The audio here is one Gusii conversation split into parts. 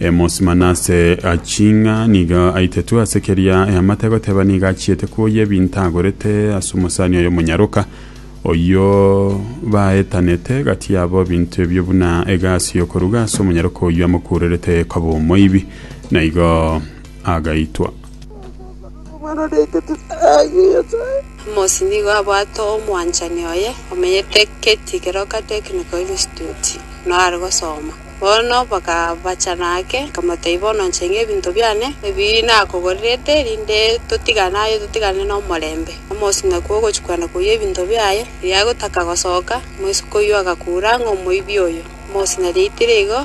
Amosi Manase aching'a nigo aitetwe ase keria eamate goteba nigo achiete kuoyia ebinto agorete ase omosani oye omonyaroka, oyio baetanete gati yabo ebinto ebio buna egasi y'okoruga ase omonyaroka oyio amokurerete koba omoibi, na igo agaitwa. Amosi nigo abwate omwanchani oye omenyete Katy keroka Technical Institute, nore gosoma. Bono bakabachana ake, bakamotebia, Bono nche ng'a ebinto biane ebi nakogorerete, rinde totigane aye, totigane nomorembe. Omosie nakwo ogochia kwenda koyia ebinto biaye, riria agotaka gosoka, omoiseke oyio agakura ng'a omoibi oyo. Omosie nariaitire igo,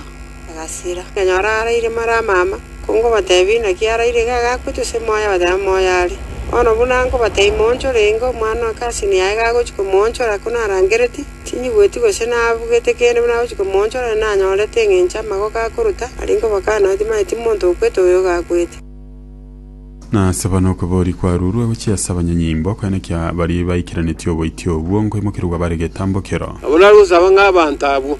agasira. Nkanyora araire mara amama, konkobatebia, Inaki araire iga iga agochia ase moyo? Abatebia, Moyo are. Bono buna nkobatebia, Moonchore, ingo, omwana o Kasi nigo aye agochia komoonchora, ko narangeretie. Tinyigweti gose nabugete kende buna nagochia komoonchora, na nanyorete engencho amagoka akoruta, aria nkobakana nao timanyeti monto okwete oyo gakwete. Na ase abana okweboria kwaruurwe gochia ase abanyanyimbo, ekeene kia baria baikeranetie oboitia obwo, nkoimokerigwa bare getambokero. Nabo nagosaba ng'a abanto abwo,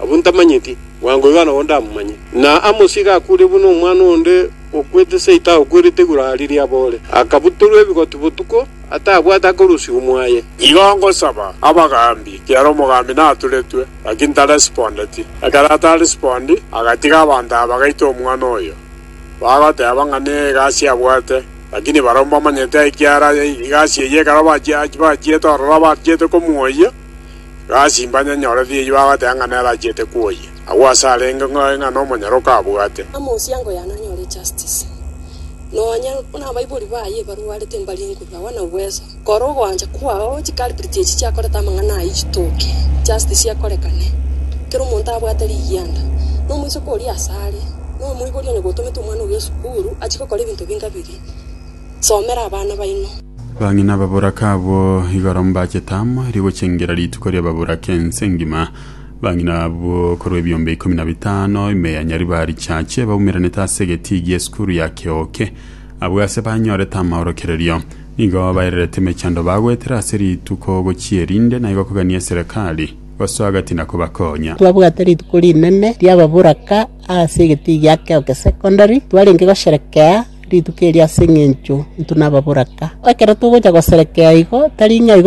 abwo ntamanyeti, bwango iga nabo ndamomanye. Na Amosi iga akuure buna omwana onde okwete seita akwerete igurari ri'abore, akabutorwa ebigotu botuko. Atabwate akorusigwa mwaye. Igo ngosaba abagaambi, ekiagera omogaambi naturetwe, lakini taresipondeti. Ekero ataresipondi, agatiga abanto aba, bagaita omwana oyo, bagoteba ng'a negasi abwate, lakini barabwo mbamanyeti ai ekiagera egasi eyio ekero bachiete ororo abachete komoyia, egasi mbanyanyoreti eyio bagoteba ng'a nere achiete kwoyia. Agwo ase arenge ng'oe ng'a nomonyaroko abwate. Amosiango yane anyore justice, Nonya nabaibori baye barwarete mbarie nguru, agwo na uweso. Kora ogoancha kwao chikaripiriti echi chiakorete amang'ana ayio chitoke, justice ekorekane. Kera omonto abwate rigianda, nomoiseke oria asare, nomoibori onye gotomete omwana oria esukuru, achie gokora ebinto binga biria. Somera abana baino. Bang'ina nababoraka abwo igoro mbachete amo, rigochengera rituko ri'ababoraka ense engima. Bang'ina abwo korwa ebiombe ikomi na bitano, ime ya Nyariba richache, baumeranete ase egetiigi y'esukuru ya Keoke. Abwo ase banyorete amaorokererio, nigo bairerete emechando bagoetera ase rituko gochia erinde, na igo kogania eserekari gosoa gati na kobakonya. Twabwate rituko rinene ri'ababoraka ase egetiigi gia Keoke Secondary. Twarenge gosherekea rituko erio ase eng'encho intwe nababoraka. Ekero togocha goserekea igo, tari ng'a igo